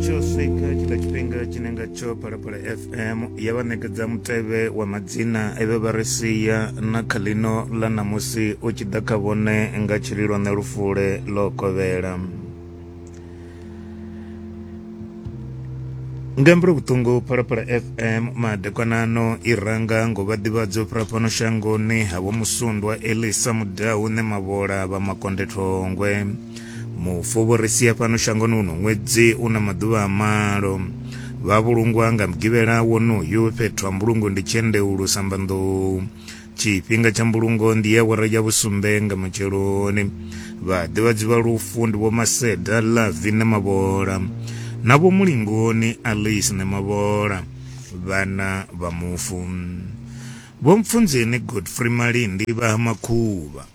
tsho swika tshila tshifhinga tshine ngatsho phalaphala fm ya vha ṋekedza mutevhe wa madzina eve vha ri sia na kha ḽino ḽa ṋamusi u tshi ḓa kha vhone nga tshililo ṋe lufule ḽo kovhela ngambiro vhuṱungu phalaphala fm madekwanano i ranga ngo vha ḓivhadzo fhira fhano shangoni havho musundwa elisa mudau ne mavhola vha makonde thongwe mufovhoresia fhano shangoni uno ṅwedzi u na maḓuvha a malo vha vhulungwa nga mugivhela wonoyu fhethu ha mbulungo ndi tshendeulu sambanḓou tshifhinga tsha mbulungo ndi ya wara ya vhusumbe nga matsheloni vhaḓivhadzi vha lufu ndi vho maseda lavi na mavhola na vho mulingoni alice na mavhola vhana vha mufu vho mpfunzeni godfrey malindi vha ha makhuvha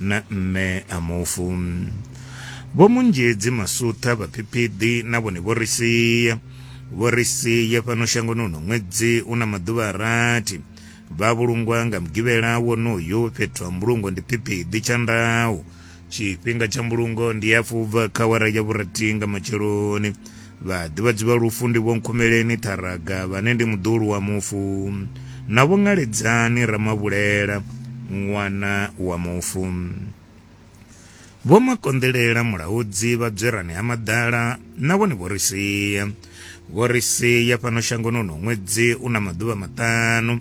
na mme a mufu. Vho Munzhedzi Masutha vha Phiphiḓi na vhone vho ri sia. Vho ri sia fhano shangoni uno ṅwedzi u na maḓuvha a rathi. Vha vhulungwa nga mugivhela wonoyu fhethu ha mbulungo ndi Phiphiḓi Tshandau. Tshifhinga tsha mbulungo ndi hafhu ubva kha awara ya vhurathi nga matsheloni. Vhaḓivhadzi vha lufu ndi Vho Nkhumeleni Ṱharaga vhane ndi muḓulu wa mufu na Vho Ngaledzani Ramavhulela ṅwana wa mufu. Vho Makonḓelela Mulaudzi vha Dzwerani ha Maḓala na vhone vho ri sia. Vho ri sia fhano shangoni uno ṅwedzi u na maḓuvha maṱanu.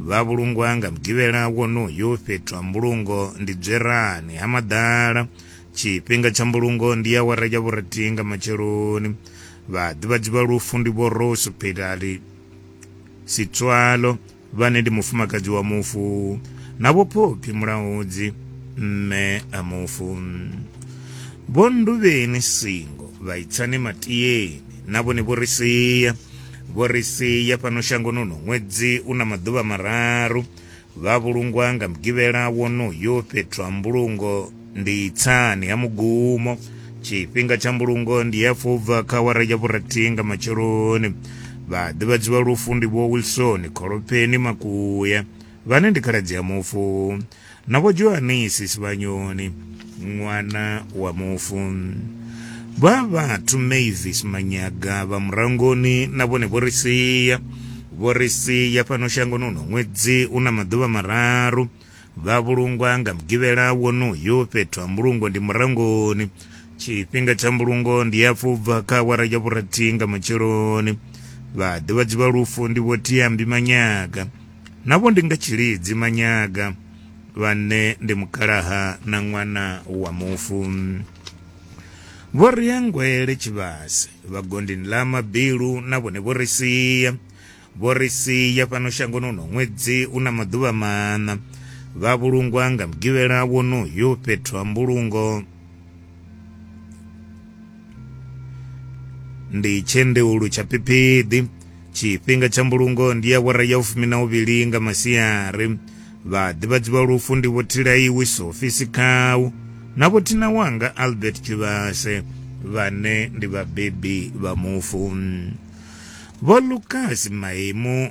Vha vhulungwa nga Mugivhela wonoyu fhethu ha mbulungo ndi Dzwerani ha Maḓala Tshifhinga tsha mbulungo ndi awara ya vhurathi nga matsheloni. Vhaḓivhadzi vha lufu ndi Vho Rose Philali Sitswalo vhane ndi mufumakadzi wa mufu na Vho Phophi Mulaudzi mme a mufu. Vho Nduvheni Singo vha Itsani Matieni na vhone vho ri sia. Vho ri sia fhano shangoni uno ṅwedzi u na maḓuvha mararu Vha vhulungwa nga mugivhela wonoyo fhethu ha mbulungo ndi tsani ha mugumo. Tshifhinga tsha mbulungo ndi ya fobva kha awara ya vhurathi nga matsheloni. Vha ḓivhadziwa lufu ndi Vho Wilson Kholopeni Makuya vhane ndi khaladzi ya mufu na Vho Johanisi Sivhanyoni. ṅwana wa mufu vha vhathu mavis manyaga vha murangoni na vhone vho ri sia vho ri sia fhano shangoni uno ṅwedzi u na maḓuvha mararu vha vhulungwa nga mugivhela wonoyo fhethu ha mbulungo ndi murangoni tshifhinga tsha mbulungo ndi hafhu bva kha awara ya vhurathihi nga matsheloni vhaḓivhadzi vha lufu ndi vho tiambi manyaga navho ndi nga tshilidzi manyaga vhane ndi mukalaha na ṅwana wa mufu vho ri ya ngwele tshivhase vhagondini ḽa mabilu na vhone vho ri sia vho ri sia fhano shangoni uno ṅwedzi u na maḓuvha maṋa vha vhulungwa nga mugivhela wonoyo fhethu ha mbulungo ndi tshendeulu tsha phiphiḓi tshifhinga tsha mbulungo ndi awara ya ufumi na uvhili nga masiari vhaḓivhadzi vha lufu ndi vho thilaiwi sofi sikhau na vho thina wanga albert tshivhase vhane ndi vhabebi vha mufu vho lukas maimu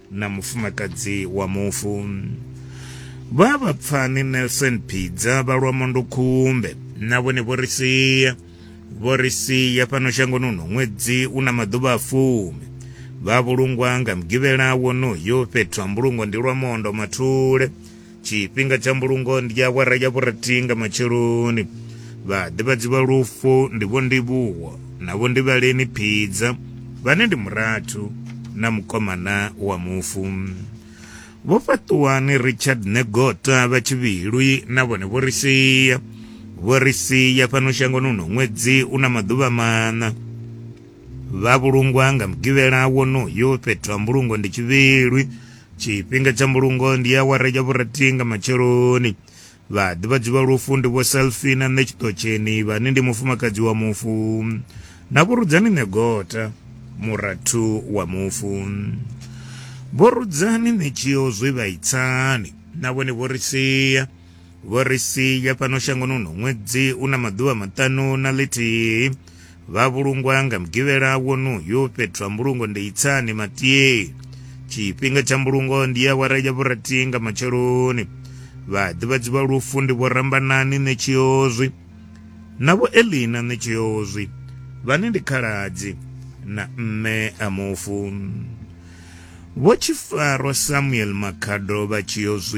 na mufumakadzi wa mufu. Vha vhapfani Nelson Phidza vha lwa Mondokhumbe na vhone vho ri sia vho ri sia fhano shangoni uno ṅwedzi u na maḓuvha a fumi vha vhulungwa nga mugivhela wonoyo fhethu ha mbulungo ndi lwa mondo mathule tshifhinga tsha mbulungo ndi awara ya vhurathihi nga matsheloni vhaḓivhadzi vha lufu ndi vho ndivhuwo na vho ndivhaleni phidza vhane ndi murathu na mukomana wa mufu vho fhaṱuwani richard negota vha tshivhilwi na vhone vho ri sia vho ri sia fhano shangoni uno ṅwedzi u na maḓuvha maṋa vha vhulungwa nga mugivhela wonoyo fhethu ha mbulungo ndi tshivhilwi tshifhinga tsha mbulungo ndi awara ya vhurathi nga matsheloni vhaḓivhadzi vha lufu ndi vho selfina nṋe tshiṱotsheni vhane ndi mufumakadzi wa mufu na vhurudzani ṋegota murathu wa mufu vhorudzani ṋetshio zwe vha itsani na vhone vho ri sia vho ri sia fhano shangoni uno ṅwedzi u na maḓuvha maṱanu na ḽithihi vha vhulungwa nga mugivhela wonoyu fhethu ha mbulungo ndi itsani matiei tshifhinga tsha mbulungo ndi ya wara ya vhurathi nga matsheloni vhaḓivhadzi vha lufu ndi vho rambanani ṋetshiozwi na vho elina ṋetshiozwi vhane ndi khaladzi na mme a mufu vho tshifaro samuel makhado vha tshiozwi